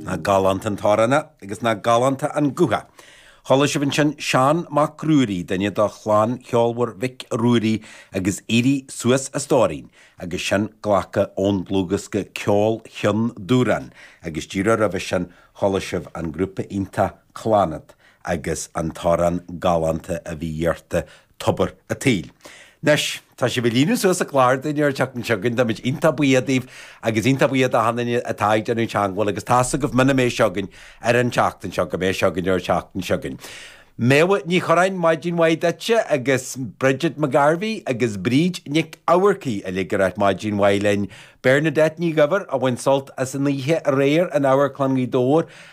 Nach galánta an t-amhrán é agus nach galánta an guth é. Chuala sibh ansin Seán Mac Ruairí, duine de chlann cheolmhar Mhic Ruairí agus Éirí Suas a Stóirín, agus sin glactha ón dlúthdhiosca Ceol Cheann Dubhrann, agus díreach roimhe sin chuala sibh an grúpa iontach Clannad agus an t-amhrán galánta a bhí iarrta Tobar an tSaoil. Anois, tá sibh ag líonadh suas an chláir dúinn ar an tseachtain seo chugainn. Táimid iontach buíoch daoibh agus iontach buíoch d'achan duine atá ag déanamh teagmháil agus tá's agaibh muna mbeidh seo againn ar an tseachtain seo, go mbeidh sé againn ar an tseachtain seo chugainn. Méabha Ní Churráin, maidin mhaith duitse agus Bridget McGarvey agus Bríd Nic Eamharcaigh uilig ag ráit maidin mhaith linn. Bernadette Ní Dhuibhir a bhain sult as an oíche aréir in Amharclann Ghaoth Dobhair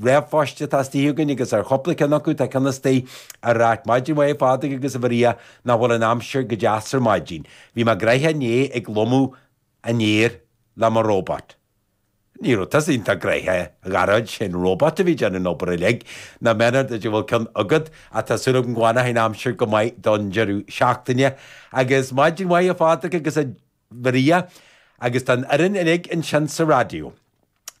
ríomhphoist atá istigh againn agus ar chúpla ceann acu tá ceann istigh ag ráit maidin mhaith, a Phádraig agus a Mharia, nach bhfuil an aimsir go deas ar maidin. Bhí mé gnoitheach inné ag lomadh an fhéir le mo róbat. Ní raibh tusa iontach gnoitheach, a Ghearóid, sé an róbat a bhí ag déanamh an obair uilig. Nach méanar duit go bhfuil ceann agat ach tá súil agam go bhfanfaidh an aimsir go maith don deireadh seachtaine. Agus maidin mhaith fada agus a. Mharia, agus don fhoireann uilig ansin sa raidió,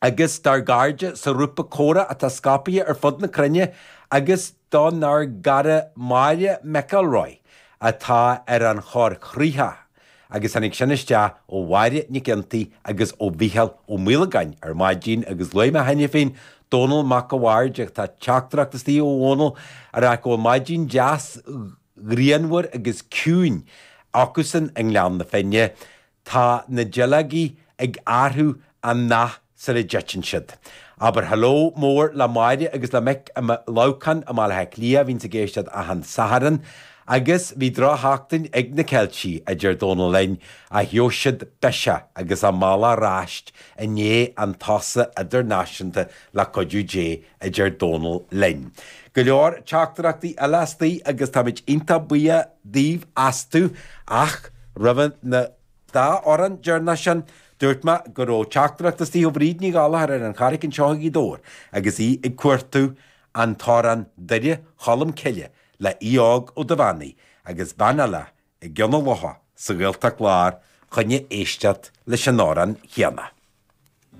agus dár gcairde sa ghrúpa Comhrá atá scaipthe ar fud na cruinne, agus donár gcara Máire McElroy atá ar an choigríoch, agus tháinig sin isteach ó Mháire Nic Fhionntaigh agus ó Mhicheál Ó Maolagáin ar maidin, agus luaigh mé cheana féin Dónall Mac a Bhaird, ach tá teachtaireacht istigh ó Dhónall, ag rá go bhfuil maidin dheas. ghrianmhar agus ciúin acusan i nGleann na Finne, tá na duilleogaí ag athrú a ndath sula dtiteann siad. Abair hello mór le Máire agus le Mick i mBaile Leamhcáin i mBaile Átha Cliath, a bhíonns ag éisteacht achan Satharn. Agus bhí drochsheachtain ag na Ceiltigh, a deir Dónal linn, ach gheobhaidh siad biseach agus a mbealach ar ais i ndiaidh an tsosa idirnáisiúnta le cuidiú Dé. a deir Dónal linn. Go leor teachtaireachtaí eile istigh agus táimid iontach buíoch daoibh astu ach roimhe na dá amhrán deireanacha sin, dúirt mé go raibh teachtaireacht istigh ó Bhríd Ní Ghallchóir ar an Charraic anseo i nGaoth Dobhair agus í ag cuartú an t-amhrán Doire Cholm Cille le Aodh Óg Ó Duibheannaigh agus bean eile i gCionn a' Locha sa Ghaeltacht Láir fá choinne éisteacht leis an amhrán chéanna.